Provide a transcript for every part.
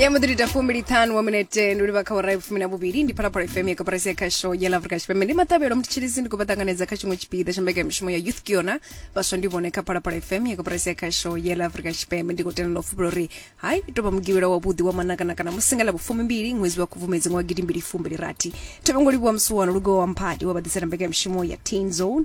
ya mudirita fumbili ṱhanu wa minete ndi livha kha ora fumi na vhuvhili ndi phalaphala fm ya kaparasi ya khasho ya lafrika tshipembe ndi maṱavhelo mutshilisi ndi khou vha ṱanganedza kha tshiṅwe tshipiḓa tsha mbekamishumo ya youth kiona vhaswa ndi vhone kha phalaphala fm ya kaparasi ya khasho ya lafrika tshipembe ndi khou tendelwa fubula uri hai tou vha mugivhela wavhuḓi wa manakanakana musingala vhufumi mbili ṅwedzi wa khubvumedzi ṅwa gidimbili fumbili rathi thavhango livhuwa musuwano lugowa mphadi wa vhaḓisela mbekamishumo ya teen zone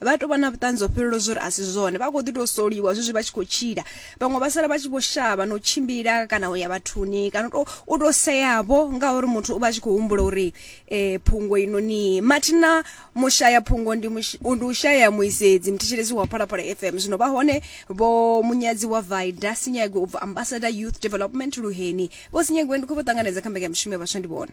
Vha tou vha na vhuṱanzi ho fhelelaho zwo ri a si zwone. Vha khou ḓi tou soliwa zwezwi vha tshi khou tshila. Vhaṅwe vha sala vha tshi vho shavha na u tshimbila kana u ya vhathuni kana u tou u tou seavho ngauri muthu u vha a tshi khou humbula uri eh, phungo inoni mathina mushaya phungo ndi mush- ndi u shaya muisedzi muthetshelesi wa phalaphala fm zwino vha hone vho munyadzi wa vaida sinyagwe u bva ambassador youth development luheni vho sinyagwe ndi khou vho ṱanganedza kha mbekanyamushumo ya vhaswa ndi vhone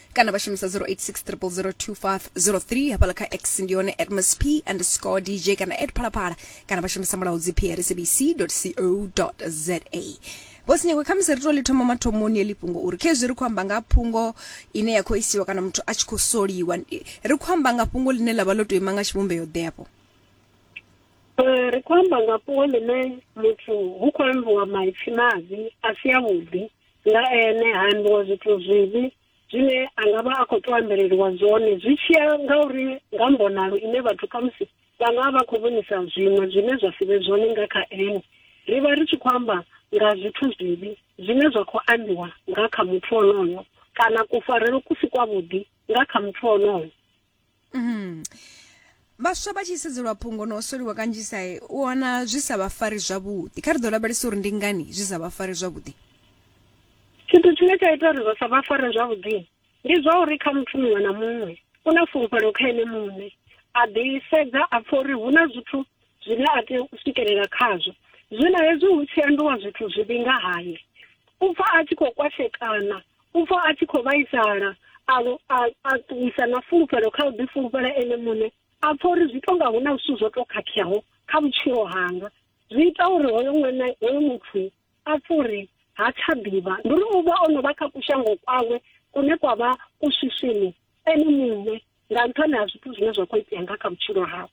kana vha shumisa 0860002503 hafhala kha x ndi yone at msp underscore dj kana at phalaphala kana vha shumisa mulaudzi prsabc co za vhosinyakwe khamusi ri to ḽi thoma mathomoni eḽi fhungo uri khezwi ri khou amba nga phungo ine ya khou isiwa kana muthu a tshi khou soliwa Ndi- ri khou amba nga fhungo ḽine ḽa vha ḽo tou ima nga tshivhumbeo ḓeafho Eh, ri khou amba nga fhungo ḽine muthu hu khou ambiwa maipfi mavhi a si avhuḓi nga ene ha ambiwa zwithu zwivhi zwine a nga vha a khou tou ambeleliwa zwone zwi tshiya nga uri nga mbonalo ine vhathu khamusi vha nga vha khou vhonisa zwiṅwe zwine zwa si vhe zwone nga kha ene ri vha ri tshi khou amba nga zwithu zwivhi zwine zwa khou ambiwa nga kha muthu onoyo kana kufarelo ku si kwavhuḓi nga kha muthu onoyo Mm. vhaswa vha tshi sedzelwa phungo na u soliwa kanzhisa u wana zwi sa vha fari zwavhuḓi kha ri ḓo lavhelesa uri ndi ngani zwi sa vha fari zwavhuḓi tshithu tshine tsha ita uri vha sa vha fare zwavhuḓi ndi zwa uri kha muthu muṅwe na muṅwe u na fulufhelo kha ene muṋe a ḓisedza a pfha uri hu na zwithu zwine a tea u swikelela khazwo zwino hezwi hu tshi ambiwa zwithu zwivhi nga haye u pfha a tshi khou kwashekana U pfa a tshi khou vhaisala, a vho a a ṱuwisa na fulufhelo kha u ḓifulufhela ene muṋe, a pfa uri zwi tonga hu na zwithu zwo to khakheaho kha vhutshilo hanga. Zwi ita uri hoyo ṅwana hoyo muthu a pfe uri ha tsha ḓivha, ndi uri u vha o no vha kha kushango kwawe kune kwa vha ku swiswini ene muṋe nga nṱhani ha zwithu zwine zwa khou itea nga kha vhutshilo hawe.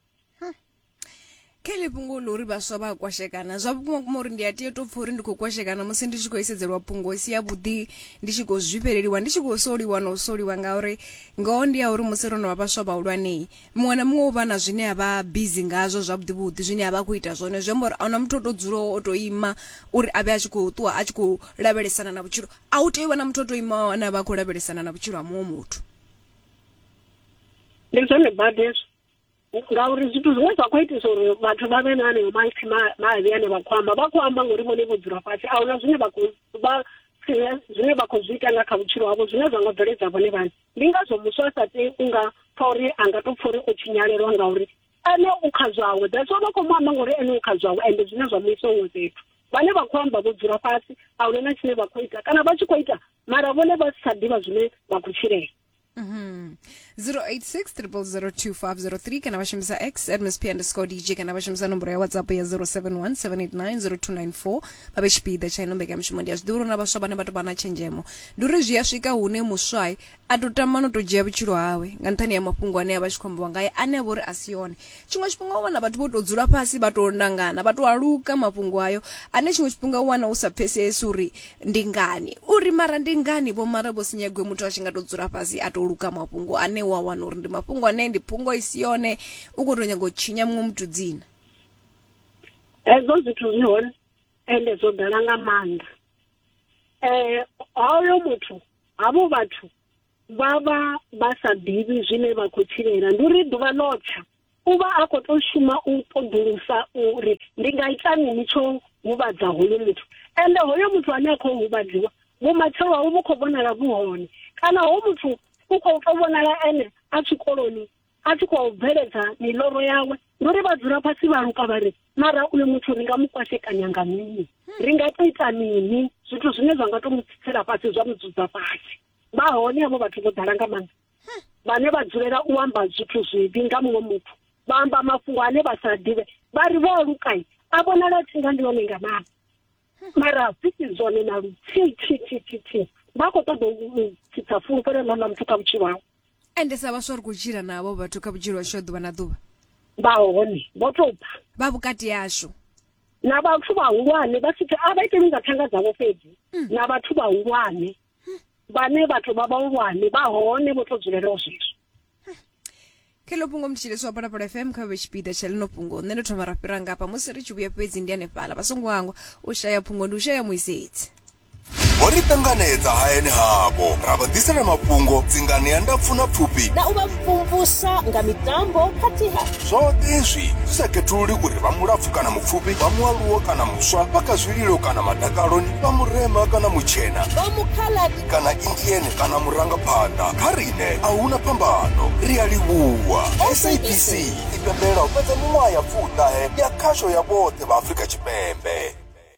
kha ḽi fhungo ḽa uri vhaswa vha a kwashekana zwa vhukuma kuma uri ndi a tea to pfha uri ndi khou kwashekana musi ndi tshi khou isedzelwa fhungo si ya vhuḓi ndi tshi khou zwifheleliwa ndi tshi khou soliwa na u soliwa ngauri ngoho ndi ya uri musi ro no vha vhaswa vhahulwane muṅwe na muṅwe u vha na zwine a vha busy ngazwo zwa vhuḓi vhuḓi zwine a vha khou ita zwone zwi amba uri ahuna muthu o to dzulaho o to ima uri a vhe a tshi khou ṱuwa a tshi khou lavhelesana na vhutshilo a u tea u vha na muthu o to ima ane a vha a khou lavhelesana na vhutshilo ha muṅwe muthu ndi zwone badi hezwo ngauri zwithu zwiṅwe zwa khou itisa uri vhathu vha vhe na aneyo maipfhi mavhi ane vha khou amba vha khou amba ngori vhone vho dzula fhasi a huna zwine vha khou vha zwine vha khou zwi ita nga kha vhutshilo havho zwine zwa nga bveledza vhone vhane ndi ngazwo muswa a sa tei u nga pfa uri a nga tou pfa uri o tshinyalelwa ngauri ene u kha zwawe that's vha khou mu amba ngori ene u kha zwawe ende zwine zwa mu isa huṅwe fhethu vhane vha khou amba vho dzula fhasi a huna na tshine vha khou ita kana vha tshi khou ita mara vhone vha si tsha ḓivha zwine vha khou tshilela 0860002503 kana vashambisa x at msp underscore dj kana vashambisa nomboro ya whatsapp ya 0717890294 vave chipiḓa tsha ino mbekamishumo ndi ya zwiḓivha uri na vhaswa vhane vha tou vha na tshenzhemo ndi uri zwi a swika hune muswai a tou tama no tou dzhia vhutshilo hawe nga nṱhani ya mafhungo ane a vha tshi khou ambiwa ngaye ane a vha uri a si one Tshiṅwe tshifhinga u wana vhathu vho tou dzula fhasi vha tou nangana vha tou aluka mafhungo ayo ane tshiṅwe tshifhinga u wana u sa pfesesi uri ndi ngani uri mara ndi ngani vho mara vho si nyagwe muthu a tshi nga tou dzula fhasi a tou luka mafhungo ane wa wana uri ndi mafhungo ane ndi phungo i si yone u khou tou nyanga u tshinya muṅwe muthu dzina hezwo zwithu zwi hone ende zwo ḓala nga maanḓa um hoyo muthu havho vhathu vha vha vha sa ḓivhi zwine vha khou tshilela ndi uri ḓuvha ḽo tsha u vha a khou tou shuma u ṱoḓulusa uri ndi nga ita mini tsho huvhadza hoyo muthu ende hoyo muthu ane a khou huvhadziwa vhumatshelo hawe vhu khou vhonala vhu hone kana ho muthu u khou tou vhonala ene a tshikoloni a tshi khou bveledza miloro yawe ndi uri vha dzula fhasi vha luka vha ri mara uyo muthu ri nga mu kwashekanya nga mini ri nga to ita mini zwithu zwine zwa nga to mu tsitsela fhasi zwa mu dzudza fhasi vha hone havho vhathu vho ḓala nga maanḓa vhane vha dzulela u amba zwithu zwivhi nga muṅwe muthu vha amba mafhungo ane vha sa ḓivhe vha ri vho lukai a vhonala tsinga ndi one nga maanḓa mara zwi si zwone na luthihi thi thi thi thi vha khou ṱoḓa u tsitsa fulufhelo ḽa ḽa muthu kha vhutshilo hawe ende sa vhaswa ri khou tshila na avho vhathu kha vhutshilo hashu ha ḓuvha na ḓuvha vha hone vho tou bva vha vhukati hashu na vhathu vhahulwane vha si a vha iteli nga thanga dzavho fhedzi na vhathu vhahulwane vhane vhathu vha vhahulwane vha hone vho to dzulelaho zwezwo kha ḽo fhungo mutshilisi wa phalaphala fm kha vhe tshipiḓa tsha ḽino fhungo nṋe ndo thoma ra fhira ngafha musi ri tshi vhuya fhedzi ndi hanefhala vha songo hangwa u shaya phungo ndi u shaya muisedzi vho ri ṱanganedza hayani havho ra vha ḓisela mafhungo dzinganea ndapfu na pfufhi na u vha mvumvusa nga mitambo khathihi Zwoṱhe hezwi zwi sa khethululi uri vha mulapfu kana mupfufhi, vha mualuwo kana muswa, vha kha zwililo kana madakaloni, vha murema kana mutshena, vha mukhaladzi kana Indian kana murangaphanḓa, kha riṋe a hu na phambano. Ri a livhuwa. SABC i pembelela u fhedza miṅwaha ya fumi-ṱahe ya khasho ya vhoṱhe vha Afrika Tshipembe.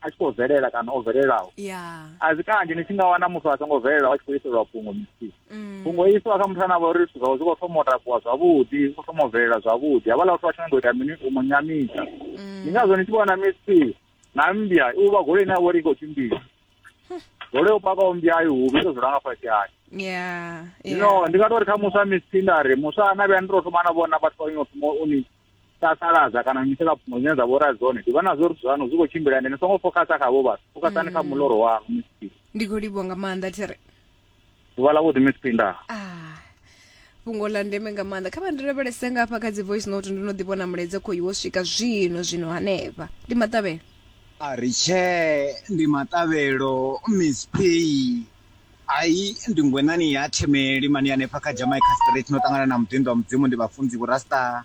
a tshi khou bvelela kana o bvelelaho a zwi kanzhi ni tshi nga wana muthu a songo bvelelaho a tshi khou iselwa fhungo misi fhungo mm. isiwa kha muthu ane a vha uri zwithu zwawe zwi khou thoma u takuwa zwavhuḓi zwi khou thoma u bvelela zwavhuḓi havhala vhathu vha tshi nyaga u ita mini u mu nyamisa mm. ndi ngazwo ni tshi vhona misi na mmbya u vha goloi ine ya vha uri i khou tshimbila goloi u pakaho mmbya ayo huvhi ito zwi langa fhasi hayo zwino ndi nga to ri kha muswa misi nda ri muswa ana vhuya ndi to thoma na vhona vhathu vha ino thoma u ni sasaladza kana nyitela pfumo dzine dza vhora dzone ndi vhona zwo ri zwanu zwi khou tshimbila ndi ni songo fokasa khavho vhathu fokasani kha mm. muloro wa mcp ndi khou livho nga maanḓa thiri ḓuvha ḽa vhuḓi mcp nda ah, fhungo ḽa ndeme nga maanḓa kha vha ndi lavhelese nga hafha kha dzi voice note ndo no ḓi vhona muledze khou iwo swika zwino zwino hanefha ndi maṱavhelo a ri tshee ndi maṱavhelo miss p Hai, ndi ngwenani ya themeli mani hanefha kha Jamaica Street no ṱangana na muḓinḓo wa Mudzimu ndi vhafunzi vhu rasta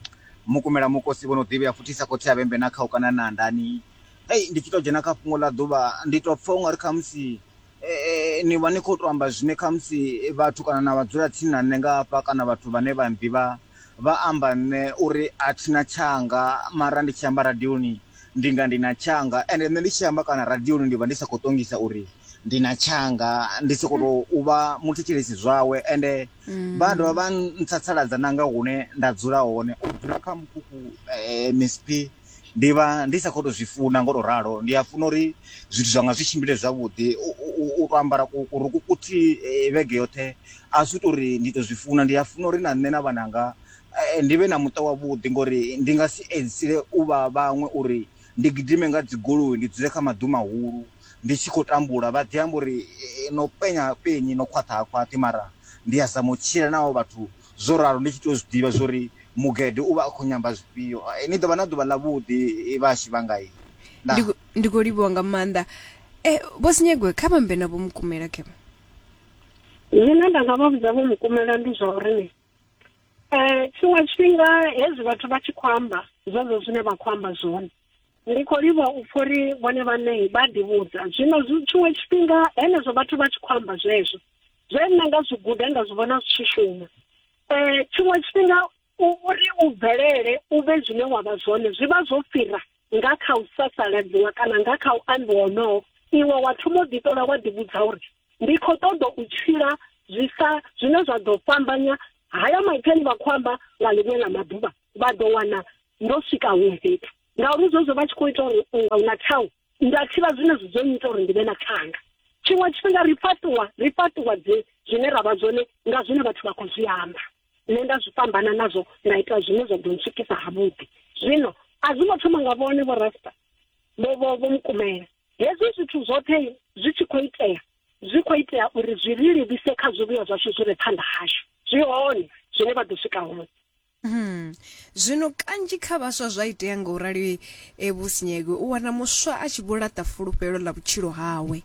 mukumela mukosi vho no ḓivhea futhi sa khotsi a vhembe na khau kana na ndani hey ndi tshi to dzhena kha fhungo ḽa ḓuvha ndi to pfha ungari kha musi eh, ni vha ni khou to amba zwine kha musi vhathu kana na vhadzula tsini na nṋe nga hafha kana vhathu vhane vha nḓivha vha amba nṋe uri a thina tshanga mara ndi tshi amba radioni Ndi nga ndi na tshanga ende nṋe ndi tshi amba kana radioni ndi vha ndi sa khou ṱongisa uri ndi na tshanga ndi soko to u vha muthetshelesi zwawe ende vha dovha vha ntsatsaladza na nga hune nda dzula hone u dzula kha mukhukhu msp ndi vha ndi sa khou to zwi funa ngo to ralo ndi a funa uri zwithu zwanga zwi tshimbile zwavhuḓi u to ambara ku kuruku kuthihi vhege yoṱhe a si tori ndi to zwi funa ndi a funa uri na nṋe na vhananga eh, ndi vhe na muṱa wavhuḓi ngori ndi nga si edzisile u vha vhaṅwe uri ndi gidime nga dzigoloi ndi dzule kha maḓu mahulu ndi tshi khou tambula vha ḓi amba uri eh, no penya penyi no khwaṱha ha khwaṱhi mara ndi a zama u tshila naho vhathu zwo ralo ndi tshi tou zwi ḓivha zwori mugede u vha a khou nyamba zwifhio eh, ni ḓo vha na ḓuvha ḽavhuḓi eh, vhashi vhangai ndi khou- ndi khou livhiwa nga maanḓa um vho sinyegwe kha vhambe na vho mukumela kema zwine nda nga vha vhudza vho mukumela ndi zwa uri ni Eh, tshiṅwe tshifhinga hezwi vhathu vha tshi khou amba zwezwo zwine vha khou amba zwone ndi khou livha u pfha uri vhone vhaṋe vha ḓivhudza zwino tshiṅwe tshifhinga henezwo vhathu vha tshi khou amba zwezwo zwe nṋe nga zwi guda nda zwi vhona zwi tshi shuma um tshiṅwe tshifhinga uri u bvelele u vhe zwine wa vha zwone zwi vha zwo fhira nga kha u sasaladziwa kana nga kha u ambiwa honoho iwe wa thoma u ḓiṱola wa ḓivhudza uri ndi khou ṱoḓa u tshila zwi sa zwine zwa ḓo fhambanya haya maipfi ane vha khou amba nga ḽiṅwe ḽa maḓuvha vha ḓo wana ndo swika huṅwe fhethu ngauri zwezwo vha tshi khou ita uri unga u na tshau nda thivha zwine zwi dzo nnyita uri ndi vhe na thanga tshiṅwe tshifhinga ri fhaṱuwa ri fhaṱuwa dzi zwine ra vha zwone nga zwine vhathu vha khou zwi amba Nṋe nda zwi fhambana nazwo nda ita zwine zwa ḓo ntswikisa havhuḓi. Zwino a zwi ngo thoma nga vhone vho Rasta vho vho vho mukumela. Hezwi zwithu zwoṱhe zwi tshi khou itea zwi khou itea uri zwi ri livhise kha zwivhuya zwashu zwi re phanḓa hashu. Zwi hone zwine vha ḓo swika hone. Hmm. Zwino kanzhi kha vhaswa zwa itea nga u rali e, Vho Sinyegwe u wana muswa a tshi vho laṱa fulufhelo ḽa vhutshilo hawe.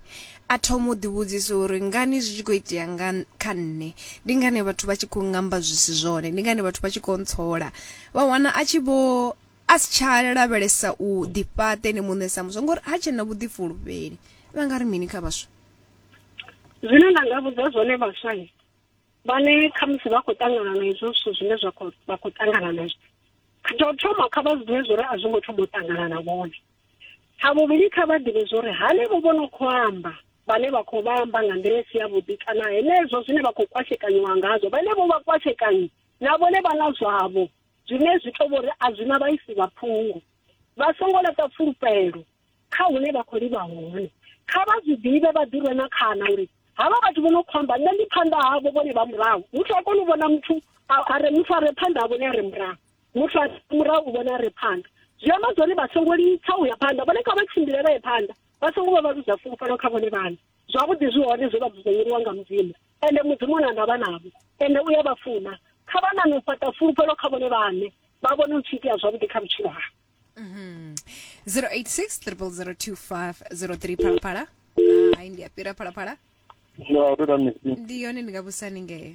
A thoma u ḓivhudzisa uri, Ngani zwi tshi khou itea nga kha nṋe? Ndi ngani vhathu vha tshi khou ngamba zwi si zwone? Ndi ngani vhathu vha tshi khou ntsola? Vha wana a tshi vho, a si tsha lavhelesa u ḓifhaṱa ene muṋe sa muswa ngori ha tshena vhuḓifulufheli. Vha nga ri mini kha vhaswa? Zwine nda nga vhudza zwone vhaswa vhane khamusi vha khou ṱangana na izwo zwithu zwine zwa khou vha khou ṱangana nazwo tsha u thoma kha vha zwiḓivhe zwori a zwo ngo thoma u ṱangana na vhone Tsha vhuvhili, kha vha ḓivhe zwo ri hanevho vho no khou amba, vhane vha khou vha amba nga nḓila i si yavhuḓi kana henezwo zwine vha khou kwashekanyiwa ngazwo, vhenevho vha kwashekanyi na vhone vha na zwavho zwine zwi tou vhori a zwi na vhaisi vha phungo. Vha songo laṱa fulufhelo kha hune vha khou livha hone. Kha vha zwi ḓivhe vha ḓi rwe na khana uri havha vhathu vho no khou amba nṋe ndi phanḓa havho vhone vha murahu. Muthu ha koni u vhona muthu a re muthu a re phanḓa ha vhone a re murahu. muthu a murahu vhona re phanḓa zwi amba zwori vha songo litsha u ya phanḓa vhone kha vha tshimbile vha ye phanḓa vha songo vha vha luza fulufhelo kha vhone vhane zwavhuḓi zwi hone zwe vha dzudzanyeliwa nga mudzimu ende mudzimu na ndavha navho ende u ya vha funa kha vha nane u fhaṱa fulufhelo kha vhone vhane vha vhone u tshi itea zwavhuḓi kha vhutshilo ha 086 002503 phalaphala hai ndi a fhira phalaphala Hello, auto da misi. ndi yone ndi nga vhusani ngeyo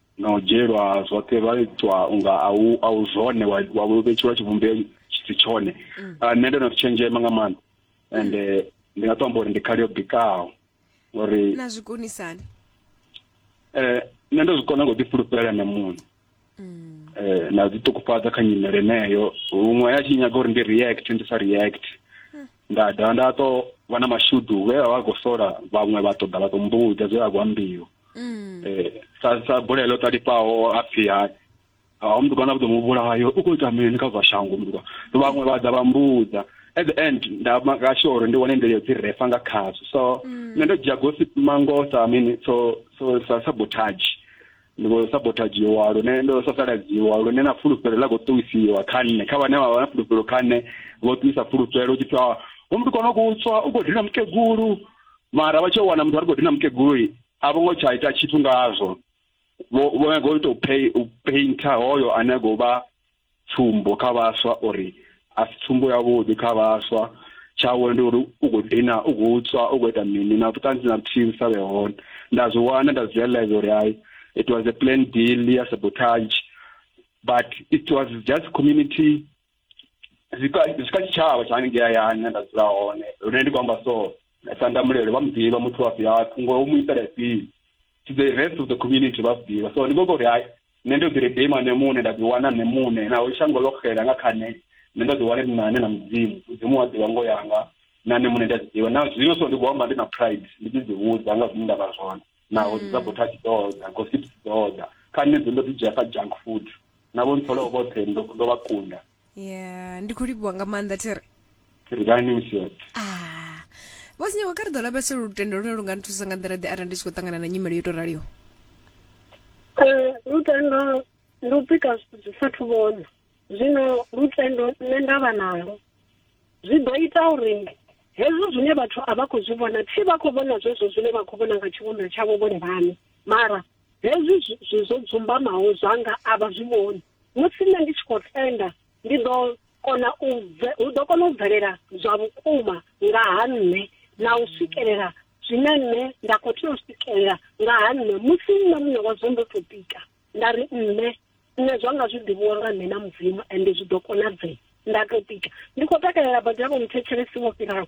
na u dzhielwa zwoṱhe vha itwa unga a u a u zwone wa wa vhetshelwa tshivhumbeo tshi tshone mm. ah, nṋe ndo no tshenzhema nga maanḓa and eh, ndi nga to amba uri ndi khali yo bikaho ngori na zwi konisani eh nṋe ndo zwi kona ngo ḓi fhulufhela na muṋe mm. eh na dzi ṱukufhadza kha nyimele yeneyo huṅwe ya tshi nyaga uri ndi react ndi sa react mm. nda dovha nda to vha na mashudu vhe vha vha khou sola vhaṅwe vha ṱoḓa vha ḓo mbudza zwe vha khou ambiwa mm. eh, sa sa bola ilo talipaho a pfhi hani a mntu kana budomu bulayo uko itamini kha zwa shango mntu vhaṅwe vha ḓa vha mbudza at the end nda maka sure uri ndi wane nḓila yo dzi refa nga khazwo so mm. nṋe ndo dzhia gossip mango sa mini so so sa sabotage ndi khou sabotagiwa lune ndo sasaladziwa lune na fulufhelo ḽa khou ṱuwisiwa kha nṋe kha vhane vha vha na fulufhelo kha nṋe vho ṱuwisa fulufhelo u tshi pfha homu ndi kona u kutswa u khou dina mukegulu mara vha tshi yo wana muthu a ri khou dina mukeguloyi a vho ngo tsha ita tshithu ngazwo vho vho nyaga u tou pay u painter hoyo ane a khou vha tsumbo kha vhaswa uri a si tsumbo ya vhuḓi kha vhaswa tshawe ndi uri u khou dina u khou tswa u khou ita mini na vhuṱanzi na vhuthihi vhu sa vhe hone nda zwi wana nda zwi realize uri hayi it was a plan deal ya sabotage but it was just community zwi kha zwi kha tshitshavha tsha hanengei hayani hune nda dzula hone lune ndi khou amba so sandamulelo vha mu ḓivha muthu wa fhiha thungo u mu itela ifhio to the rest of the community vha zwi ḓivha so ndi khou uri hai nṋe ndo ḓi redima nṋe muṋe nda ḓi wana nṋe muṋe naho shango ḽo xela nga kha nṋe nṋe ndo ḓi wana ndi na ane na mudzimu mudzimu wa ḓivha ngo yanga na nṋe muṋe ndi a ḓi ḓivha na zwino so ndi khou amba ndi na pride ndi tshi ḓi vhudza nga zwine nda vha zwone naho dzi sabotage mm. doda gossips doda kha nṋe dzo ndo ḓi dzhia sa junk food na vho ntsolaho vhoṱhe ndo vha kunda yeah ndi khou livhuwa nga maanḓa thiri thiri dani msiot ah vho sinyaho kha ri ḓo lavhesela lutendo lune lu nga nthusa nga nḓila ḓe arali ndi tshi khou ṱangana na nyimelo yo tou raliho eh, lutendo ndi u pika zwithu zwi sathu vhona zwino lutendo nṋe nda vha nalo zwi ḓo ita uri Hezwo zwine vhathu a vha khou zwi vhona, thi vha khou vhona zwezwo zwine vha khou vhona nga tshivhumbeo tshavho vhone vhaṋe. Mara hezwi zwi zwo dzumbamaho zwanga a vha zwi vhoni. Musi nṋe ndi tshi khou tenda, ndi ḓo kona u bve, hu ḓo kona u bvelela zwa vhukuma nga ha nṋe na u swikelela zwine nṋe nda khou tea u swikelela nga ha nṋe musi nṋe muṋe wazwo ndo tou tika. nda ri nṋe nṋe zwa nga zwi ḓivhiwa nga nṋe na mudzimu ende zwi ḓo konadzea nda to tika ndi khou takalela badi yavho muthetshelesi wo fhiraho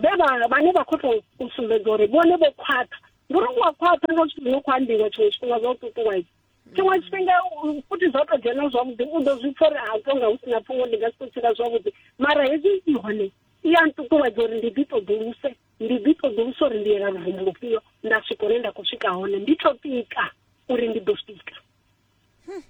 vhe vhane vha khou tou u sumbedza uri vhone vho khwaṱha ndi uri wa khwaṱha nga zwithu zwino khou ambiwa tshiṅwe tshifhinga zwa u ṱuṱuwedza tshiṅwe tshifhinga futhi zwa to dzhena zwavhuḓi u ḓo zwi pfa uri a tonga hu sina pfungo ndi nga si to tshila zwavhuḓi mara hezwi i hone i ya nṱuṱuwedza uri ndi ḓi ṱoḓuluse ndi ḓi ṱoḓulusa uri ndi yela luvumo lufhio nda swika hune nda khou swika hone ndi to pika uri ndi ḓo swika hmm.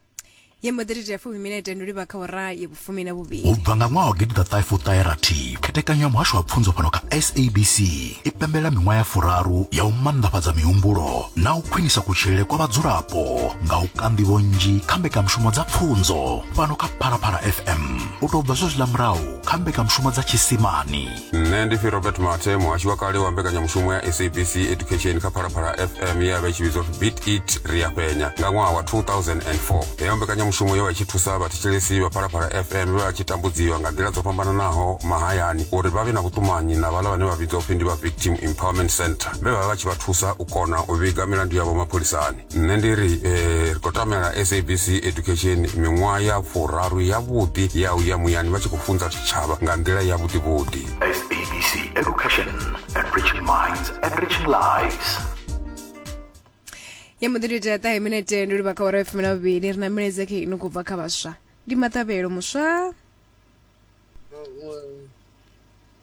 ye mbo ḓiri fumi minete ndi livha kha ora ye vhufumi na vhuvhili u bva nga ṅwaha wa gidi ḓa ṱahe khethekanyo ya muhasho wa pfunzo fhano kha sabc i pembela miṅwaha ya furaru ya u mannḓafhadza mihumbulo na u khwinisa kutshilele kwa vhadzulapo nga u kanḓivho nnzhi kha mbekanyamushumo dza pfunzo fhano kha phalaphala fm u tou bva zwezwiḽa murahu kha mbekanyamushumo dza tshisimani nne ndi phi robert mate muhashi wa kale wa mbekanyamushumo ya sabc education kha phalaphala fm ye ya vha i tshi vhidzwa pfi beat it ri a penya nga ṅwaha wa 2004 heyo mbekanyamushumo yo vha i tshi thusa vhathetshelesi vha phalaphala fm vhe vha tshi tambudziwa nga nḓila dzo fhambananaho mahayani uri vha vhe na vhuṱumanyi na vhala vhane vha vhidzwa pfi ndi vha victim empowerment center vhe vha vha vha tshi vha thusa u kona u vhiga milandu yavho mapholisani nṋe ndi ri eh, ri khou tamela sabc education miṅwaha ya furaru yavhuḓi ya u ya muyani vha tshi khou funza tshitshavha nga nḓila yavhuḓivhuḓi SABC Education, enriching minds, enriching lives. ya muḓiri tea ṱahe minete ndi livha kha ora ya fumi na vhuvhili ri na milaedza khe ino khou bva kha vhaswa ndi maṱavhelo muswa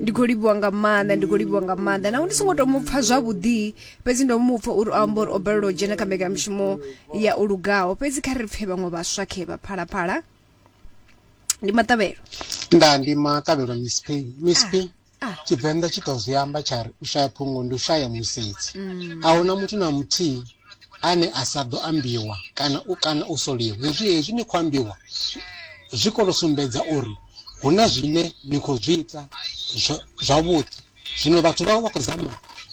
ndi khou livhiwa nga maanḓa ndi khou livhiwa nga maanḓa naho ndi songo to mu pfha zwavhuḓi fhedzi ndo mu pfha uri o amba uri o balelwa u dzhena kha mbekanyamushumo ya o lugaho fhedzi kha ri pfhe vhaṅwe vhaswa khe vha phalaphala ndi maṱavhelo nda ndi maṱavhelo miss p miss p ah. tshivenḓa tshi to zwi amba tsha ri u shaya phungo ndi u shaya musedzi a hu na muthu na muthihi ane a sa ḓo ambiwa kana u kana u soliwa hezwi hezwi ni khou ambiwa zwi kono sumbedza uri hu na zwine ni khou zwi ita zwa- zwavhuḓi zwino vhathu vha vha vha khou zama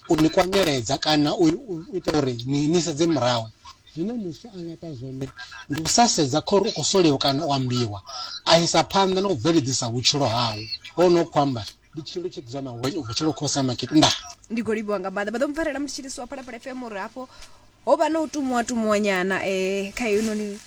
u ni kwanyeledza kana u u ita uri ni ni sedze murahu Zwine muswa a nga ita zwone ndi u sa sedza khori u khou soliwa kana u ambiwa, a isa phanḓa na u bveledzisa vhutshilo hawe. Ho no khou amba ndi tshilo tsho dzula na wenyu u bva tshilo khou sa makete. Nda. Ndi khou livhuwa nga maanḓa. Vha ḓo mpfarela musi tshi livhusiwa Phalaphala FM uri hafho ho vha na u tumuwa tumuwa nyana eh kha heinoni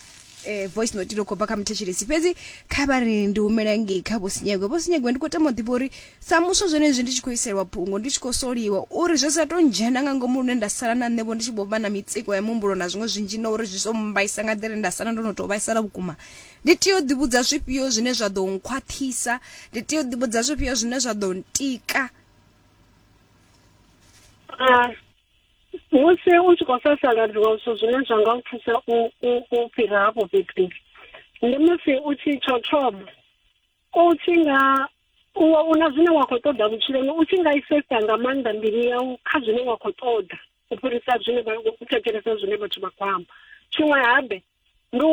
eh, voice note ino khou bva kha muthetshelesi fhedzi kha vha ri ndi humela ngei kha vhosinyegwe vhosinyegwe ndi khou tama u ḓivha uri sa muswa zwenezwi ndi tshi khou iselwa phungo ndi tshi khou soliwa uri zwi sa to ndzhena nga ngomu lune nda sala na nṋevho ndi tshi vho vha na mitsiko ya muhumbulo na zwiṅwe zwinzhi na uri zwi so mmbaisa nga nḓila ine nda sala ndo no tou vhaisala vhukuma ndi tea u ḓivhudza zwifhio zwine zwa ḓo nkhwaṱhisa ndi tea u ḓivhudza zwifhio zwine zwa ḓo ntika Ah, musi u tshi khou sasaladziwa zwithu zwine zwa nga u thusa u fhira hafho fhethu ndi musi u tshi tsho thoma u tshi nga u wa una zwine wa khou ṱoḓa vhutshiloni u tshi nga isesa nga maanḓa mbilu yau kha zwine wa khou ṱoḓa u fhirisa zwine u thetshelesa zwine vhathu vha khou amba tshiṅwe habe ndi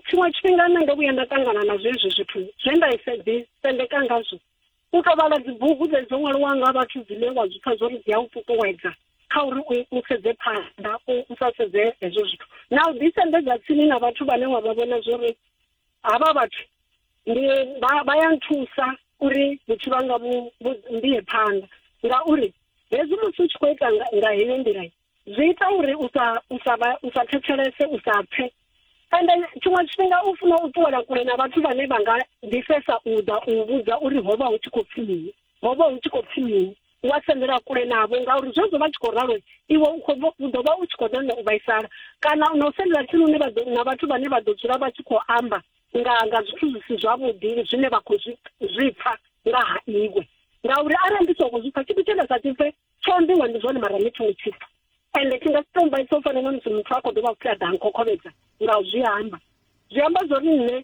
tshiṅwe tshifhinga nṋe ndo vhuya nda ṱangana na zwezwi zwithu zwe nda isa ḓi sendeka ngazwo u tou vhala dzibugu dze dzo ṅwaliwa nga vhathu dzine wa zwi pfha zwori dzi a u ṱuṱuwedza kha uri u sedze phanḓa u sa sedze hezwo zwithu na u ḓisendedza tsini na vhathu vhane wa vha vhona zwori havha vhathu ndi vha ya nthusa uri vhuthu vhanga vhu mbie phanḓa ngauri hezwi musi u tshi khou ita nga heyo nḓila zwi ita uri u sa u sa u sa thetshelese u sa pfe and then tshiṅwe tshifhinga u funa u ṱuwela kule na vhathu vhane vha nga ḓifhesa u ḓa u vhudza uri ho vha hu tshi khou pfi mini ho vha hu tshi khou pfi mini wa sendela kule navho ngauri zwezwo vha tshi khou ralo iwe u ḓo vha u tshi khou ṋaṋa u vhaisala kana na u sendela tsini une na vhathu vhane vha ḓo dzula vha tshi khou amba nga nga zwithu zwi si zwavhuḓi zwine vha khou zwi pfa nga ha iwe ngauri arali ndi songo zwi pfa tshithu tshe nda sa tshipfe tsho ambiwa ndi zwone mara ni thongo tshipfa ende tshi nga si tou mbaisa u fana na musi muthu a khou dovha futhi a ḓa nkhokhobedza nga u zwi amba zwi amba zwo ri nṋe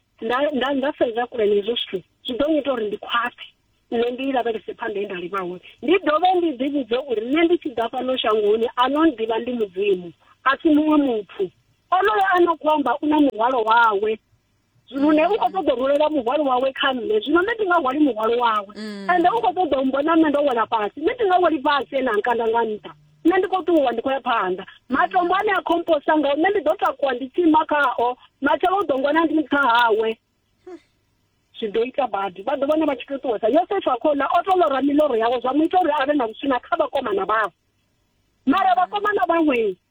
nda sedza kule na hezwo zwithu zwi ḓo ngita uri ndi khwaṱhe nṋe ndi lavhelese phanḓa e nda livha hone ndi dovhe ndi ḓi vhudze uri nṋe ndi tshi ḓa fhano shangoni a no ḓivha ndi mudzimu a si muṅwe muthu onoyo a no khou amba u na muhwalo wawe lune u khou ṱoḓa u rulela muhwalo wawe kha nṋe zwino nṋe ndi nga hwali muhwalo wawe mm. ende u khou ṱoḓa u mbona nṋe ndo wela fhasi nṋe ndi nga weli fhasi ene a nkanda nga nṱha nṋe ndi khou ṱuwa ndi khou ya phanḓa matombo ane a khomposa ngao nṋe ndi ḓo takuwa ndi tsima khao matshelo u ḓo ngwana ndi nṱha hawe zwi ḓo ita badi vha ḓo vhona vha tshi tou ṱuwesa yosefa a khouḽa o to lora miloro yawe zwa mu ita uri a vhe na vhuswina kha vhakomana vhawe mara vhakomana vhaṅwe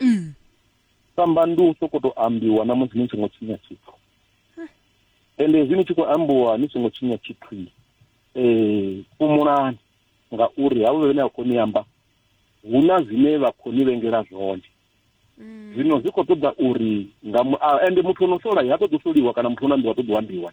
mm. samba ndi u sokoto ambiwa na musi ni songo tshinya tshithu ende hezwi ni tshi khou ambiwa ni songo tshinya tshithu um fhumulani ngauri havho vhene a khou ni amba hu na zwine vha khou ni vhengela zwone mm. zwino zwi khou ṱoḓa uri nga ende muthu o no sola ha ṱoḓi u soliwa kana muthu o no ambiwa ṱoḓi u ambiwa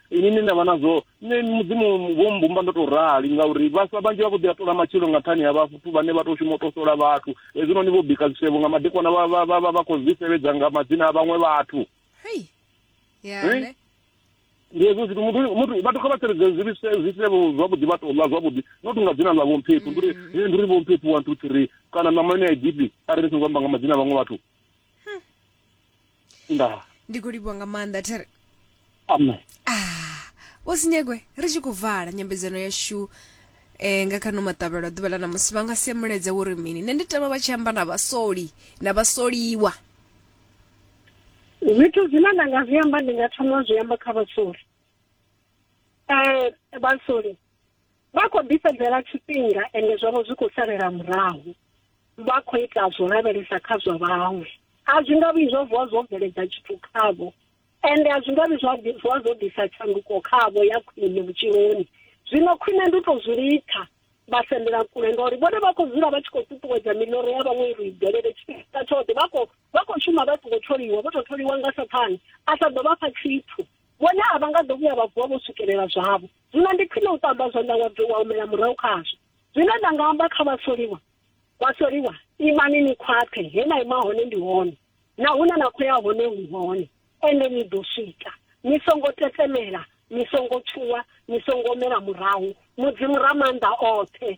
ini ni ndavha nazwo nṋe mudzimu wo mbumba ndo to rali ngauri vhaswa vhanzhi vha vho ḓi a tola matshilo nga nṱhani ha vhathu vhane vha tou shuma u to sola vhathu hezwino ni vho bika zwisevho nga madekwana vha khou zwi sevhedza nga madzina a vhaṅwe vhathu ndi hezwo zwithu muthu vhathu kha vha seledze zwisevho zwavhuḓi vha tou ḽa zwavhuḓi not nga dzina ḽa vhomphephu ndi uri ndi uri vhomphephu one two three kana ṋama ine ya gipi arali ni songo amba nga madzina a vhaṅwe vhathu ndaa ndi khou livhuwa nga maanḓa thiri amen ah wo sinyegwe ri tshi khou vala nyambedzano yashu eh nga kha no maṱavhelo ḓuvha ḽa ṋamusi vha nga si muledze wo ri mini nṋe ndi tama vha tshi amba na vhasoli na vhasoliwa zwithu zwine nda nga zwi amba ndi nga thoma zwi amba kha vhasoli um vhasoli vha khou ḓifhedzela tshifhinga ende zwavho zwi khou salela murahu vha khou ita zwo lavhelesa kha zwa vhaṅwe a zwi nga vhi zwo vuwa zwo bveledza tshithu khavho ende a zwi nga vhi zwa vuwa zwo ḓisa tshanduko khavho ya khwine vhutshiloni zwino khwine ndi u tou zwi litha vha sendela kule ngauri vhone vha khou dzula vha tshi khou ṱuṱuwedza miḽoro ya vhaṅwe uri i bvelele tshifhinga tshoṱhe vha khou vha khou shuma vha songo tholiwa vho tou tholiwa nga sathane a sa ḓo vha fha tshithu vhone a vha nga ḓo vhuya vha vuwa vho swikelela zwavho Zwino ndi khwine u ṱamba zwanḓa wa dovha wa humela murahu khazwo. Zwine nda nga amba kha vhasoliwa, vhasoliwa, imani ni khwaṱhe, he na ima hone ndi hone, na hune na khou ya hone hu hone, ende ni ḓo swika. Ni songo tetemela, ni songo tshuwa, ni songo humela murahu. Mudzimu Ramaanḓa oṱhe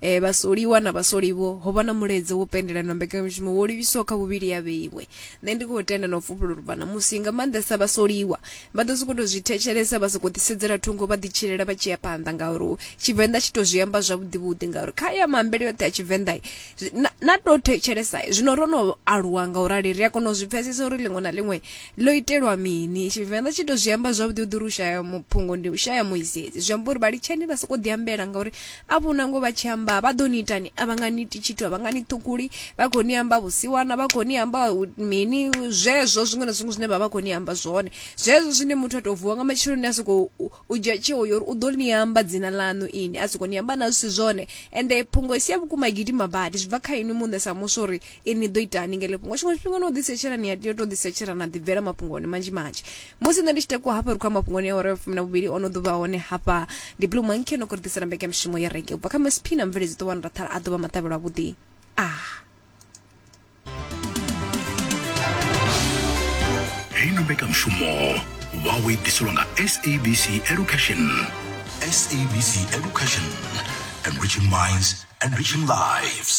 E, vhasoliwa na vhasoliwo, ho vha na mulaedza wo pendelanwa na mbekanyamushumo wo livhiswaho kha vhuvhili ha vheiwe. Nṋe ndi khou tenda na u fhufhela uri vhana musi, nga maanḓesa vhasoliwa, vha ḓo sokou tou zwi thetshelesa vha sokou ḓisedzela thungo vha ḓitshilela vha tshi ya phanḓa ngauri Tshivenḓa tshi tou zwi amba zwavhuḓivhuḓi ngauri kha ya maambele yoṱhe a Tshivenḓa na, na tou thetshelesa zwino ro no aluwa nga u rali ri a kona u zwi pfesesa uri ḽiṅwe na ḽiṅwe Ḽo itelwa mini? Tshivenḓa tshi to zwi amba zwavhuḓi u ḓi uri u shaya muphungo ndi u shaya muisedzi zwi amba uri vha litshani vha soko ḓi ambela ngauri a vhona ngo vha tshi amba vha ḓo ni itani a vha nga ni iti tshithu a vha nga ni ṱhukuli vha khou ni amba vhusiwana vha khou ni amba mini zwezwo zwiṅwe na zwiṅwe zwine vha vha khou ni amba zwone zwezwo zwine muthu a tou vuwa nga matsheloni a sokou U dzhia tsheo ya uri u ḓo ni amba dzina ḽaṋu inwi, a sokou ni amba na zwi si zwone. Ende phungo i si ya vhukuma i gidima badi. Zwi bva kha inwi muṋe sa muswa uri inwi ni ḓo itani nga heḽo fhungo. Tshiṅwe tshifhinga no ḓisetshela, ni a tea u tou ḓisetshela na ḓibvela mafhungoni manzhi manzhi. Musi nṋe ndi tshi takuwa hafha ri khou ya mafhungoni a awara ya vhufumi na vhuvhili, o no ḓo vha hone hafha. Ndi Blue Monkey no khou ri ḓisela mbekanyamushumo ya Reggae u bva kha Mcp na mubveledzi Ṱohwana Rathara a ḓo vha maṱavhelo avhuḓi. Ah. heino mbekanyamushumo vhawe ḓiselwa nga sabc education sabc education enriching minds enriching lives